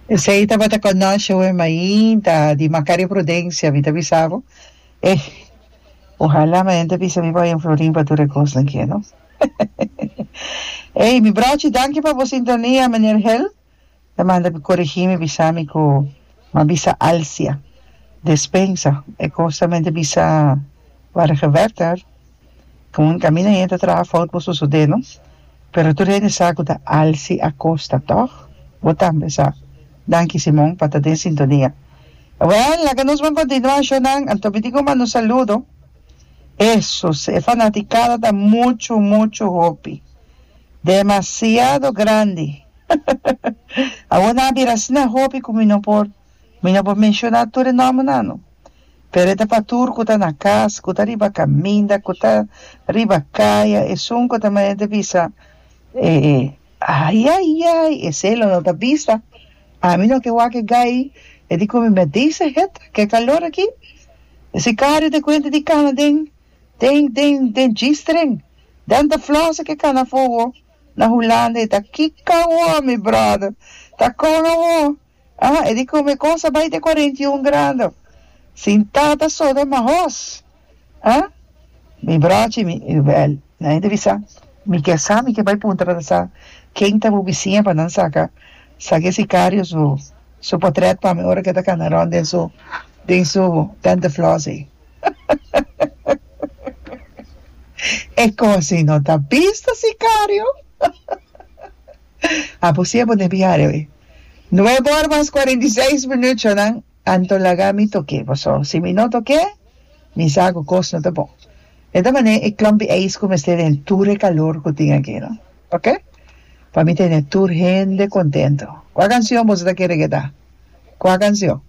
Esei tabata conoshe we mainta di Macario Prudencia mi ta bisa bo eh ohala mi hende bisa mi pa Florin pa tur e cosnan ki no ey mi brochi danki pa bo sintonia Meneer Hel ta manda mi corigi mi bisa mi cu ma bisa Alcia Despensa e cosnan mi hende bisa ware gewerter Con camina hende ta traha fout por sosode nos, pero tur hende sa cu ta Alci Acosta toch? Bo tambe sa. Danki Simon pa ta den sintonia. Awel, laga nos ban continua ashonan, anto mi tin cu manda un saludo. Esus, e fanaticada ta mucho, mucho hopi. Demasiado grandi. Awor nan a bira asina hopi cu mi no por, mi no por menciona tur e nombernan no. Pero e ta pa tur ku ta na kas, ku ta riba kaminda, ku ta riba kaya, esun ku ta manera bisa, Ayayay, esei lo no ta bisa. Ami no ke wak e gai, e di ku mi, But dese het, ke kalor aki! E sikario ta kuenta di kana den, den, den, den G-string. Dan ta flòse ke kana afó awor. Na Hulanda e ta, Kiko awor, mi bròder? Ta kon awor? Ah, e di come cosa bay te cuarenta y un grando sin tata soda ma hos. Ah? Mi brochi mi, well, nadie ta bisa. Mi ke sa, mi ke bay punta pa ta sa ken ta bo bisiña pa nan saca Sage Sicario su su potret pa mi ora ke ta cana rond den su den su tente floss ey. Ecosi no ta bista Sicario? A bo si e bo debe yara awe. Nuebe ora mas kuarenta i seis minutjonan anto laga mi tok'é. Paso, si mi no tok'é, mi sa ku kos no ta bon. E ta manera e klompi eis ku mester tene tur e kalor ku tin aki, no? Oke? Pa mi tene tur hende kontento. Kua kansion boso ta kere keda? Kua kansion?